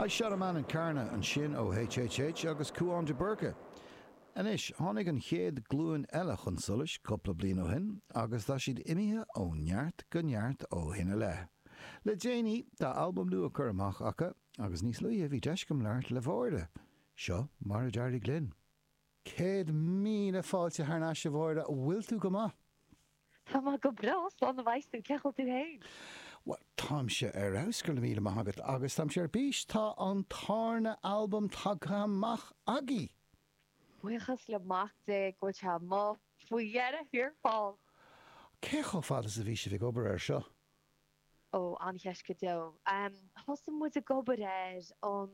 I shot a man in Carna, ansin ó HHH agus Cúán de Búrca. Anois, tháinig an chéad glúin eile chun solais cúpla bliain ó shin agus tá siad imithe ó neart go neart ó shin i leith. Le déanaí, tá albam nua curtha amach acu agus níos luaithe bhí deis agam labhairt le Mháire. Seo mar a d'éirigh linn. Céad míle fáilte thar n-ais a Mháire, bhfuil tú go maith? Tá mé go breá slán a bheas tú, cén chaoi a bhfuil tú fhéin? Bhuel, táimse ar fheabhas, go raibh míle maith agat, agus táimse ar bís, tá an tárna albam tagtha amach agaí! Buíochas le Mac Dé go bhfuil sé amuigh faoi dheireadh thiar thall! Cé chomh fada is a bhí sibh ag obair air seo? Ó, an-cheist go deo. Thosaigh muid ag obair air um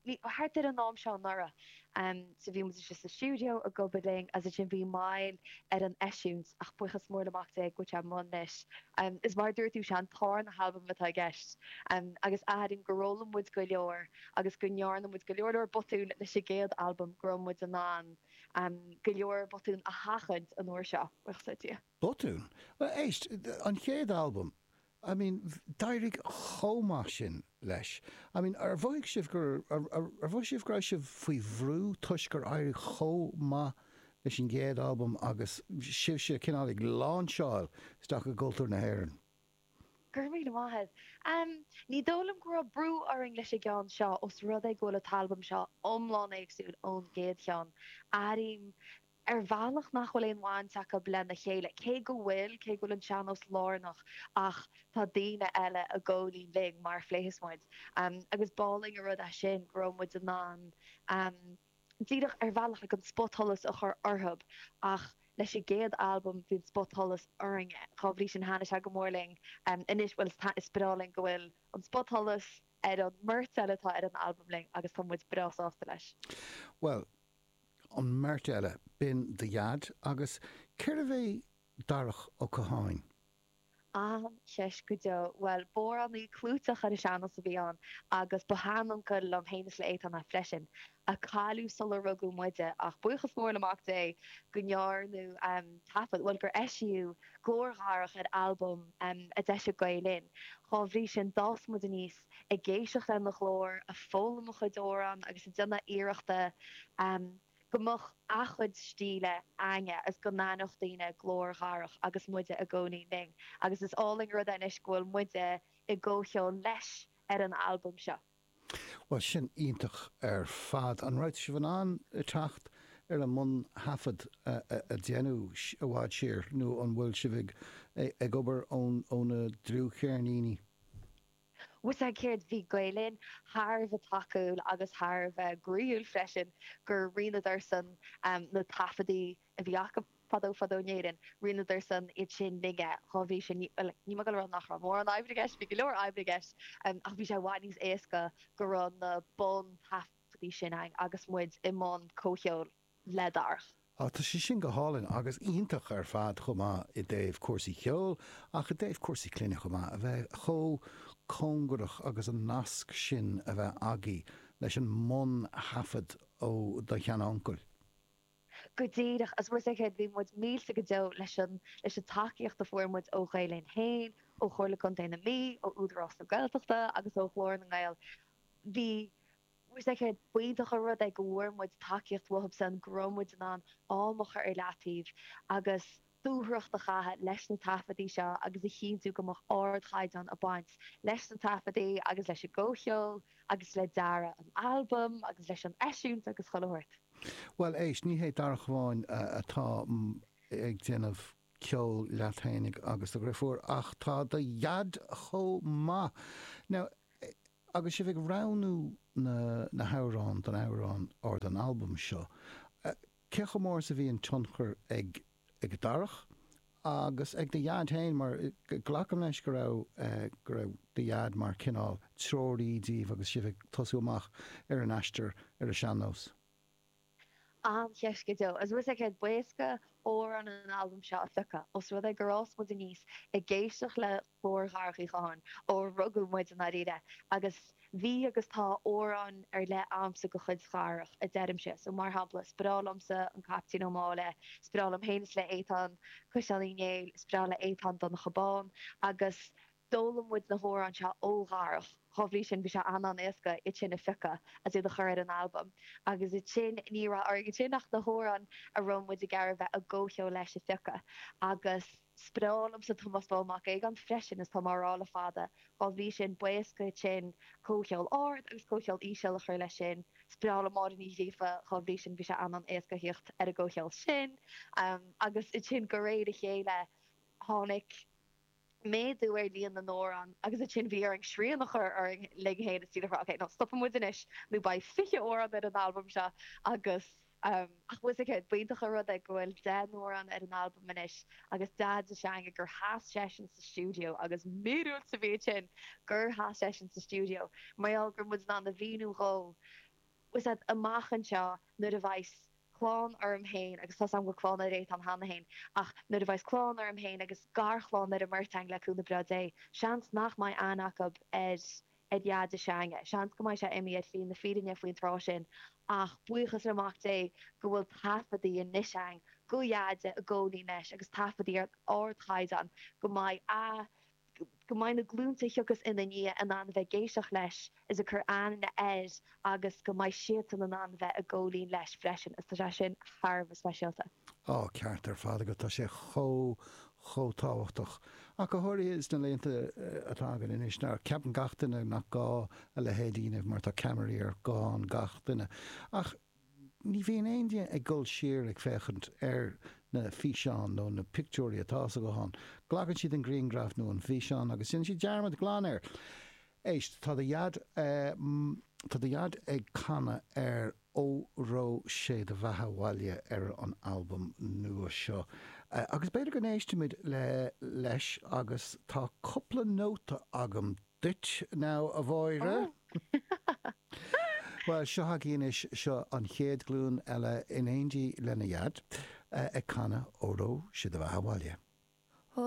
mí, thart ar an am seo anuraidh. So bhí muid istigh sa stiúideo ag obair linn agus ansin bhí moill ar an eisiúint ach buíochas mór le Mac Dé go bhfuil sé amuigh anois. Is mar a dúirt tú, sé an tárna halbam atá i gceist agus airím gur fhoghlaim muid go leor agus go ndearna muid go leor leor botún leis an gcéad albam go raibh muid in ann go leor botún a sheachaint an uair seo, buíochas le Dia. Botún? Bhuel, éist, an chéad albam, I mean, d'éirigh chomh maith sin leis. I mean, ar mhothaigh sibh go, ar mhothaigh sibh go raibh sibh faoi bhrú toisc gur éirigh chomh maith leis an gcéad albam agus sibhse cineál ag láinseáil isteach i gcultúr na hÉireann? Go raibh míle maith agat. Em, ní dóigh liom go raibh brú orainn leis an gceann seo os rud é go bhfuil an t-albam seo iomlán éagsúil ón gcéad cheann. Airím ar bhealach nach bhfuil aon bhaint acu lena chéile, cé go bhfuil, cé go bhfuil an sean-nós lárnach ach tá daoine eile i gcónaí linn mar a phléifeas muid agus b'álainn an rud é sin go raibh muid in ann díreach ar bhealach like an spotsholas a chur orthu ach leis an gcéad albam bhí an spotsholas orainne dhá bhrí sin thaitnigh sé go mór linn anois bhuel is breá linn go bhfuil an spotsholas ar an mbeirt eile atá ar an albam linn agus tá muid breá sásta leis. Bhuel, an mbeirt eile, b'in do Dhaid agus cérbh é Darach Ó Catháin? An-cheist go deo. Bhuel, b'amhránaí clúiteach ar an sean-nós a bhí ann agus ba shean-uncail liom féin is le Étáin é freisin, a cailleadh sular rugadh muide ach buíochas mór le Mac Dé go ndearnadh taifead, bhuel gur eisíodh glór Dharach ar albam a d'eisigh Gael Linn. Dá bhrí sin, d'fhás muid aníos. ag éisteacht lena ghlór, ag foghlaim a chuid amhrán agus ag déanamh iarrachta go mbeadh a chuid stíle againn agus go n-aithneodh daoine glór Dharach agus muide i gcónaí linn. Agus is álainn an rud é anois go bhfuil muide i gcomhcheol leis ar an albam seo. Bhuel sin iontach ar fad. An raibh sibh in ann teacht ar an mbun-thaifead a déanadh i bhfad siar nó an bhfuil sibh ag obair ó na dlúthcheirníní? Bhfuil a fhios agat céard, bhí Gael Linn thar a bheith tacúil agus thar a bheith gnaíúil freisin, gur roinneadarsan na taifeadtaí a bhí acu fadó fadó in Éirinn, roinneadarsan iad sin linne. Dhá bhrí sin, ní, bhuel, ní maith go raibh nach raibh mórán oibre i gceist, bhí go leor oibre i gceist, ach bhí sé i bhfad níos éasca go raibh na buntaifeadtaí sin ann agus muid i mbun comhcheoil. le Darach. Á, tá sé sin go hálainn agus iontach ar fad chomh maith i dtaobh cúrsaí ceoil ach i dtaobh cúrsaí clainne chomh maith, a bheith chomh cóngarach agus an nasc sin a bheith agaibh leis an mbun-thaifead ó do sheanuncail? Go díreach, agus mar a dúirt mé, bhí muid millte go deo leis an tacaíocht a fuair muid ó Ghael Linn féin, ó Chomhairle Contae na Mí, ó Údarás na Gaeltachta agus ó Ghlór na nGael. Bhfuil a fhios agat céard, b'iontach an rud é go bhfuair muid tacaíocht uathubsan go raibh muid in ann am a chur ar leataobh agus dúthracht a chaitheamh leis na taifeadtaí seo agus a chinntiú go mbeadh ardchaighdeán ag baint leis na taifeadtaí agus leis an gcomhcheol agus le dearadh an albaim agus leis an eisiúint agus chuile shórt. Bhuel, éist, ní hé Darach amháin atá ag déanamh ceoil leat fhéinig agus do dhriofúr ach tá do dhaid chomh maith. Now, Agus sibh ag roghnú na na hamhráin don amhrán or don albam seo, cé chomh mór is a bhí an tionchar ag ag Darach agus ag do Dhaid féin mar glacaim leis go raibh go raibh do Dhaid mar cineál treoraí díbh agus sibh ag tosú amach ar an aistear ar an sean-nós? An-cheist go deo. Agus bhfuil a fhios agat céard, b'éasca amhráin an albaim seo a phiocadh, os rud é gur fhás muid aníos ag éisteacht le glór Dharach Uí Chatháin, ó rugadh muid i ndáiríre, agus bhí agus tá amhráin ar leith agamsa de chuid Dharach, a deirimse. So, mar shampla, is breá liomsa An Caiptín Ó Máille, is breá liom féin is le Étáin, Caisleán Uí Néill, is breá le Étáin Donncha Bán, agus. D'fhoghlaim muid na hamhráin seo ó Dharach. Dhá bhrí sin bhí sé an-an-éasca iad sin a phiocadh agus iad a chur ar an albam. Agus ansin, ní raibh orainn ansin ach na hamhráin a raibh muid ag iarraidh bheith i gcomhcheol leis a phiocadh. Agus is breá liomsa Tomás Bán Mac Aogáin freisin is tá mé á rá le fada. Dhá bhrí sin b'éasca ansin comhcheol ard agus comhcheol íseal, a chur leis sin. Is breá liom Máire Ní Ghríofa, dhá bhrí sin bhí sé an-an-éasca a thíocht ar an gcomhcheol sin. Agus ansin de réir a chéile, tháinig. méadú ar líon na n-amhrán agus ansin bhí orainn srian a chur orainn linn fhéin is dúradh ok now stopfaidh muid anois nó beidh fiche amhrán ar an albam seo agus ach muis céard b'iontach an rud é go bhfuil deich n-amhrán ar an albam anois agus Deaide s'againne gur sheas seisean sa stiúideo agus míorúilt a bhí ansin gur sheas seisean sa stiúideo mar gheall go raibh muid in ann a mhíniú dhó Is ea, amach anseo, nuair a bheas clann orm féin, agus tá's a'm go bhfuil clann ar Étáin cheana féin, ach nuair a bheas clann orm féin agus garchlann ar an mbeirt againn le cúnamh breá Dé, seans nach mbeidh aithne acu ar ar Dheaide s'againne. Seans go mbeidh sé imithe ar shlí na fírinne faoin tráth sin, ach buíochas le Mac Dé go bhfuil taifeadtaí anois againn de Dheaide i gcónaí anois agus taifeadtaí ar ardchaighdeán go mbeidh a. go mbeidh na glúnta a thiocfas inár ndiaidh in ann a bheith ag éisteacht leis is ag cur aithne air agus go mbeidh siadsan in ann bheith ag gabháil fhoinn leis freisin is tá sé sin thar a bheith speisialta. Tá an ceart ar fad agat, tá sé chomh, chomh tábhachtach. Ach go háirithe sna laethanta atá againn anois, nuair a ceapann gach duine nach gá a leithéid a dhéanamh mar tá ceamaraí ar ghuthán gach duine. Ach Ní bhíonn éinne ag dul siar ag féachaint ar na físeáin nó na pictiúirí atá sa ghuthán. Glacann siad an grianghraf nó an físeán agus déanann siad dearmad glan air. Éist, tá do dhaid, tá do dhaid ag canadh ar Óró Sé do Bheatha Abhaile ar an albam nua seo agus b'fhéidir go n-éistfimid leis agus tá cúpla nóta agam duit now a Mháire. Bhuel, seo chugainn anois, seo an chéad ghlúin eile in éindí lena ndaid, ag canadh Óró, Sé do Bheatha Abhaile.